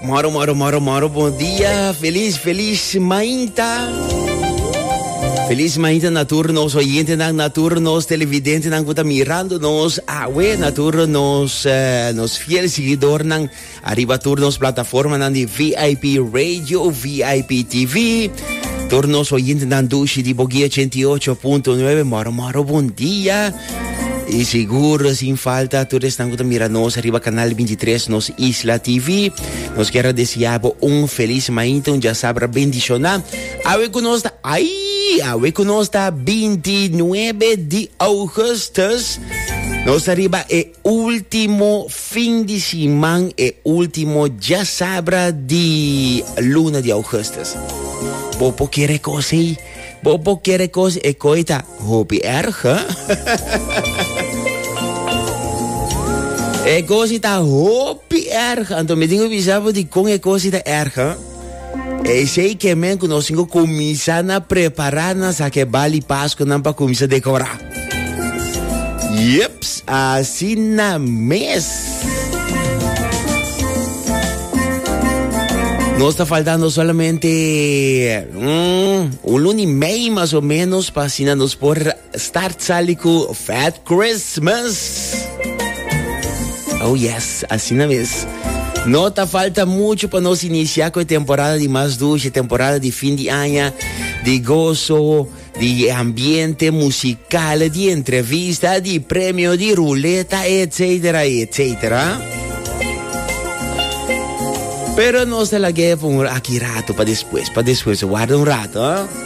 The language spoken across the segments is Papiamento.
Moro, moro, moro, moro, bom dia. Feliz, feliz mainta. Feliz mainta na tur nos oyente nan, na tur nos televidente nan kuta mirando nos awe, na tur nos, eh, nos fiel seguidor nan arriba tur nos plataforma nan di VIP Radio, VIP TV. Tur nos oyente nan dushi di Bogia 88.9, moro, moro, bom dia. Y seguro sin falta tur esnan cu ta mira nos arriba canal 23 nos Isla TV. Nos quiero deseabo un feliz maite, un ya sabra bendiciona. Awe cu nos ta, ay, awe cu nos ta 29 di augustus. Nos arriba e Ultimo fin di siman e ultimo djasabra di luna di augustus. Bo por kere kos ei. Bo por kere kos e koi ta hopi erg. e kosi ta hopi erg. Anto mi tin bisa bo di kon e kosi ta erg. Esei ke men ku nos tin ku kuminsá na prepará nan sa ke bali paskunan pa kuminsá dekorá. Yeps, asina mes. Nos ta faltando solamente mm, un luni mei mas o menos pa asina nos por Start sali cu Fat Christmas. Oh yes, asina mes. No ta falta mucho pa nos inicia cu e temporada di mas dulce, temporada di fin di aña, di gozo, di ambiente musical, di entrevista, di premio, di ruleta, etcetera, etcetera. Pero nos ta lag'e pa un aki rato, pa despues, pa despues, guarda un rato, eh.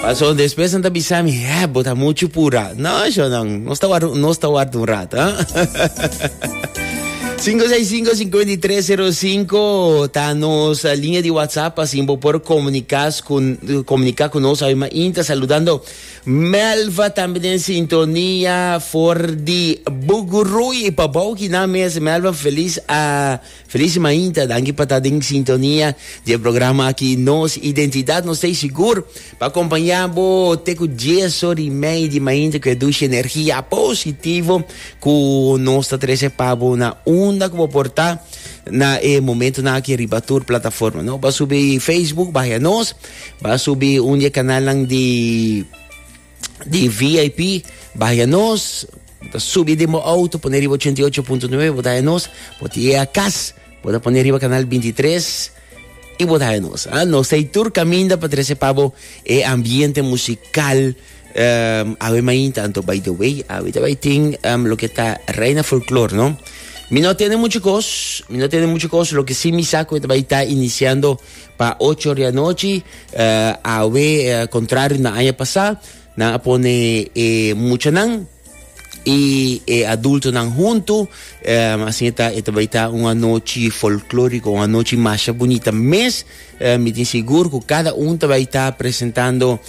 Paso después han ta bisa mi, eh, bota mucho pura. No, yo no, no está guardo, no está guardo un rato, ¿eh? 565-5305 ta nos eh, línea de WhatsApp, así por comunicar con, comunicar con nos. Además, inta saludando Melva también en sintonía for di Bugurui. Pabauki na mes, Melva, feliz a... Feliz mainta, danki pa ta den sintonia di e programa aki Nos Identidad, nos ta ei sigur pa acompaña bo te cu dies or y mei di mainta cu e dushi energia positivo cu nos ta trece pa bo na unda cu bo por ta na e momentonan aki riba tur plataforma. No, ba subi Facebook, baja nos, ba subi un di e canalnan di di VIP, baja nos, bota subi di mo auto, pone riba 88.9, bota ya nos, bota ya cas, bota pone riba canal 23 y bota ya nos. Ah, nos hay tur caminda pa trece pabo e ambiente musical um, awe main tanto by the way, awe te ting um, lo que está reina folklore, no? Mi no tiene mucho cos, mi no tiene mucho cos, lo que sí mi saco te va a estar iniciando Pa ocho di anochi, awe contrario na aña pasa, nan a pone e muchanan y e adultonan hunto, asina ta e ta bay ta un anochi folclorico, un anochi masha bunita mes, mi tin sigur cu cada un ta bay ta presentando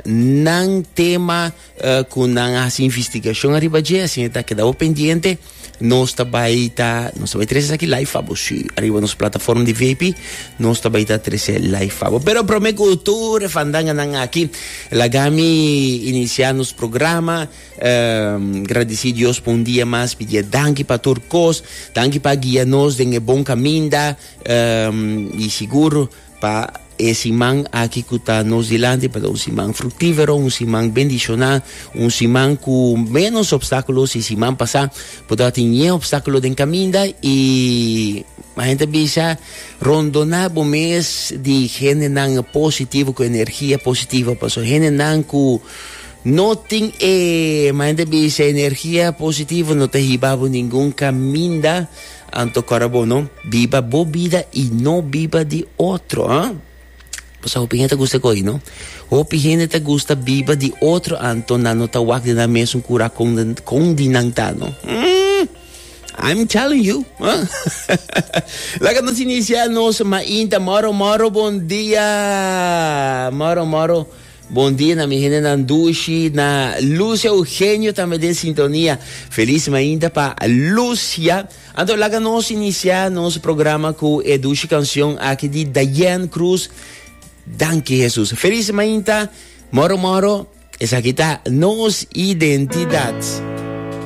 nan tema. cu nan a haci investigacion ariba dje, asina ta keda bo pendiente, nos ta bay ta, nos ta bay trece esaki live pa bo, si, ariba nos plataforma di VIP, nos ta bay ta trece live pa bo. Pero prome cu tur e fandanganan aki, laga mi inicia nos programa, gradici Dios pa un dia mas, pidi'e danki pa tur cos, danki pa guia nos den e bon caminda, y sigur, Pa e siman aki cu ta nos dilanti pa ta un siman fructivero, un siman bendiciona, un siman cu menos obstaculo si siman pasa, por ta tin ñe obstaculo den caminda y ma gente bisa rondona bo mes di gente nan positivo cu energia positiva paso gente nan cu no tin e ma gente bisa energia positiva no ta hiba bo ningun caminda Anto cora bo no biba bo bida y no biba di otro, ha? Bo sa hopi hende ta gusta goy, no? Hopi hende ta gusta biba di otro anto nan no ta wak di nan mesun cura con, con di nan ta, no? Mm, I'm telling you, ha? Laga nos inicia nos mainta moro moro bon dia moro moro Bon dia na mi hendenan dushi, na Luz Eugenio tambe den sintonia. Feliz mainta pa Luz, ya. Anto laga nos inicia nos programa cu e dushi cancion aki di Diane Cruz, Danki Jesus. Feliz mainta, moro moro, esaki ta nos identidad.